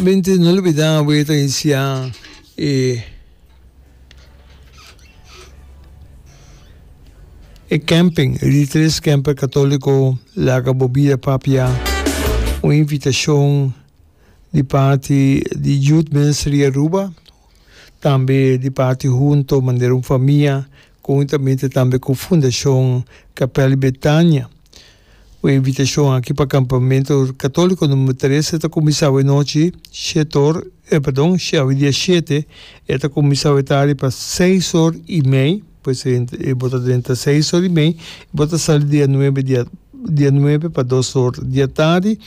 Binti no lubidá awé ta inisiá e e kèmping di e tres kèmper katòliko Laga bo bida papia. Un invitashon di parti di Youth Ministry Aruba tambe di parti Hunto manera un famia Conjuntamente tambe cu Fundacion Capel di Betania. Bu invitacion aki pa campamento catolico number trece ta cuminsa awe nochi shete or, eh pardon, awe dia shete, e ta cuminsa awe tardi pa seis or y mei, pues e bo ta drenta seis or y mei y bo ta sali dia nuebe, dia dia nuebe pa dos or dia tardi.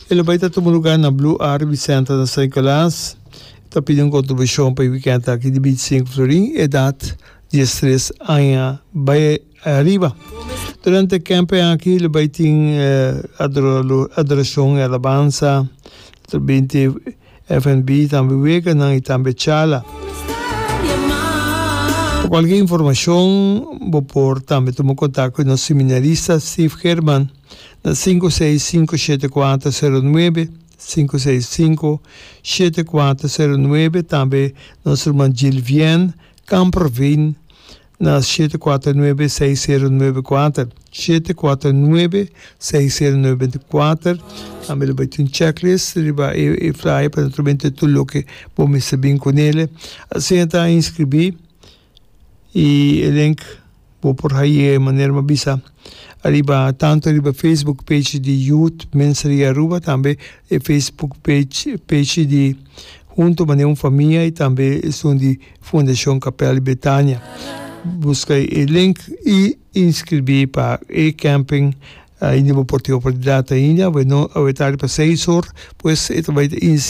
E lo bay ta tuma lugar na Blue Arvi Center na San Nicolas. Ta pidi un kontribushon pa e wikènt aki di bintisinku florin, edat diestres aña bai ariba. Durante e kèmpen aki lo bai tin adorashon i alabansa, otro binti FNB, tambe weganan i tambe charla. Pa kualke informashon bo por tambe tuma kontak ku nos seminarista Steve German na sinku seis sinku shete kuater seru nuebe. Sinku seis sinku shete kuater seru nuebe tambe nos ruman Jill Vian Kamperveen na shete kuater nuebe seis seru nuebe kuater shete kuater nuebe seis seru nuebe binti kuater tambe lo bai tin checklist riba e flyer pa naturalmente tur loke bo mester bin kunele asina ta inskribí. y e link bo por haye manera mi a bisa ariba tanto riba facebook page di Youth Ministry Aruba tambe e facebook page page di Hunto mane un famia y tambe esun di Fundacion Capella di Betania busca e link y inscribi pa e camping ainde bo por tin oportunidad ainda awe no awe ta riba seis or pues e ta bay ta inicia.